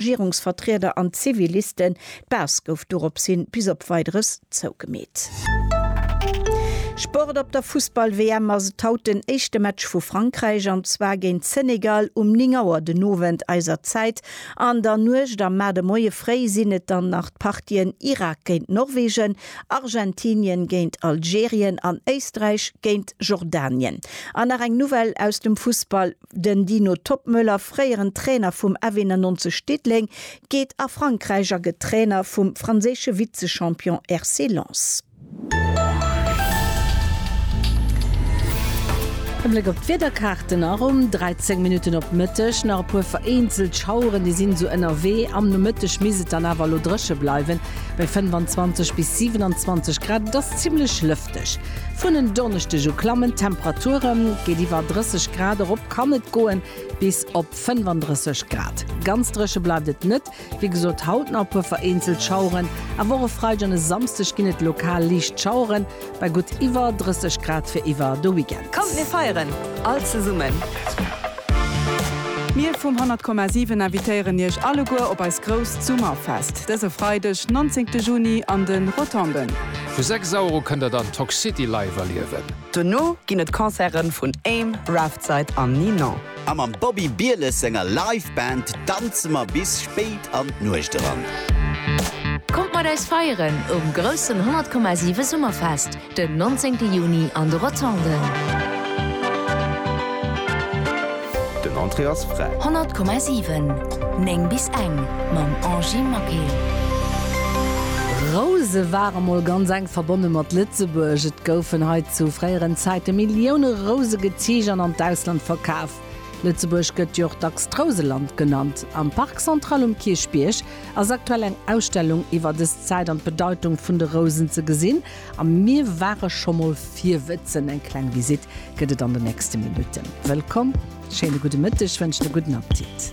Regierungsvertrieder an d'Zivilisten. D'Baass gouf doropshin bis op Weideres zougemeet. Sport Op der Fussball-WM ass et haut den éischte Match vu Frankräich, an zwar géint Senegal um 9 Auer den Owend eiser Zäit. An der Nuecht a mar de Moie fréi sinn et dann nach d'Partien Irak géint Norwegen, Argentinien géint Algerien an Éisträich géint Jordanien. An nach eng Nouvelle aus dem Fussball. Den Dino Toppmöller, fréieren Trainer vum F 91 Diddeleng, geet a Frankräich a gëtt Trainer vum franséische Vize-Champion RC Lens. E Bléck op d'Wiederkaarten nach um 13 Minutten op Mëtteg. Nach e puer vereenzelt Schaueren, déi sinn esou ënnerwee. Am Nomëtteg misst et dann awer elo dréche bleiwen, bei 25 bis 27 Grad. Et ass zimmlech lëfteg. Arktesch. Vun en Donneschdeg u klammen d'Temperature géint iwwer 30 Grad, erop kann et goe bis op 35 Grad. Ganz dréche bleift et net, wéi gesot haut nach e puer vereenzelt Schaueren, awer och e Freideg an e Samsdeg ginn et lokal liicht Schauere bei gutt iwwer 30 Grad fir iwwer de Weekend. Kommt mir feieren all zesummen! Mir vum 100,7 invitéieren iech alleguer op eist grousst Summerfest dëse Freideg 19 Juni an de Rotonden. Vu 6 Euro kënnt der dann Toxcity live erliewen. Dono ginn et Concerten vun Aim, Raftside an Ninon. A mam Bobby Bieles senger Live Band danze mer bis spéit an d'Nuecht eran. Kommt mat eis feieren um groussen 100,7 Summerfest den 19 Juni an de Rotonden. Den Entrée ass fräi. 100,7, 9 bis eng mam Angy Maquet. Rouse ware mol ganz enk verbonne mat Lëtzebuerg. Et goufen hei zu fréieren Zäite Millioune Rouse geziicht an an d'Ausland verkaf. Lëtzebuerg gëtt jo och dacks d'Rouseland genannt. Am Parc Central um Kierchbierg ass aktuell eng Ausstellung iwwer dës Zäit an d'Bedeitung vun de Rousen ze gesinn. A mir ware scho mol virwëtzen. Eng kleng Visitt gëtt et an de nächste Minutten. Wëllkomm, schéine gudde Mëtteg, wënschen e gudden Appetit.